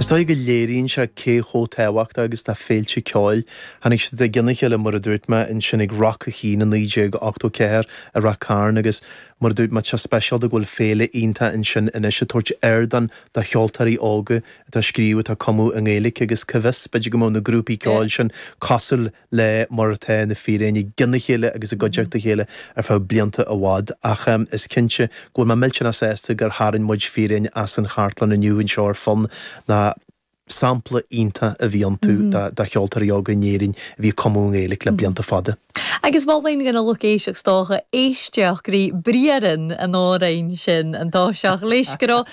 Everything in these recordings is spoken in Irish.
Is dóigh go léiríonn sé cé chomh tábhachtach agus atá féilte ceoil. Tháinig siad i gcionn a chéile, mar a dúirt mé, ansin ag Rock an Chinn i 1984 i Rath Cairn agus, mar a dúirt mé, tá sé speisialta go bhfuil féile iontach ansin anois ag tabhairt ardán do cheoltóirí óga atá ag scríobh, atá ag cumadh i nGaeilge agus cá bhfios, b'fhéidir go mbeadh na grúpaí ceoil sin cosúil le. le mar atá Na Fíréin i gcionn a chéile agus i gcuideachta a chéile ar feadh blianta i bhfad, ach is cinnte go bhfuil mé millteanach sásta gur tharraing muid Fíréin as an chartlann inniu anseo ar Fonn, ná sampla iontach a bhí iontu de cheoltóirí óga in Éirinn a bhí ag cumadh i nGaeilge le blianta fada. Agus mholfainn do na lucht éisteachta, is dócha, éisteacht go dtí Briathra an Fhíréin sin, an dá seach-léigh go raibh.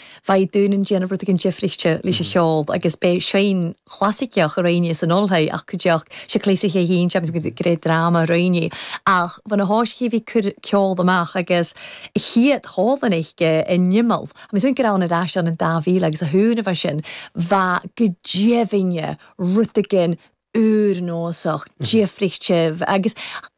Bheadh daoine ag déanamh rud éigin difríte leis an cheol agus beidh seinm chlasaiceach ar éinne san ollshoigh ach go dtiocfadh sé cleasaithe a haon James go raibh dráma ar éinne. Ach bheadh na háisithe a bhí ag cur ceol amach agus a chífeadh Colvin aige in Imeall. Tá mé súil gur ann ar ais an 2000 agus a húnamh as sin. Bheadh go deimhin rud éigin úrnósach difríthe agus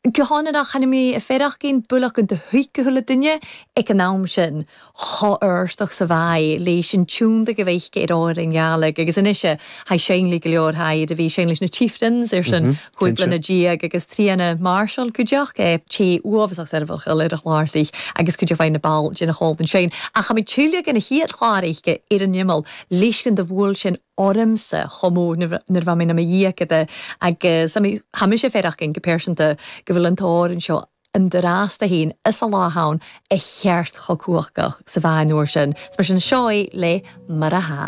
guthánach ainmní a feirfeadh aon builleacan de thuigthe le duine ag an am sin chomh h-árthach sa mhaith leis an tionndadh a bheadh ar ór an ghealaigh agus anois a haghaidh seinn le go leor thaighde a bhí seinn leis na Chieftains ar son chúig bliana déag agus Tríona Marshall cuideach té uaibhasach soirbheachail air a' chlàrsaich agus cuid de mhaith na ball déna chomhalta ansin ach tá muid tuillte ag an chéad chlár aige ar an Imeall leisce do bhuail sinn ormsa chomh mór nuair a bhí mé i mo dhéagóir agus caithfidh mise féin aideachadh go pearsanta go bhfuil an t-amhrán seo an-dràsta fhèin is a lá ann a cheart chomh cumhachtach 's a bha e an uair sin. 's mar sin, seo é le Mar a.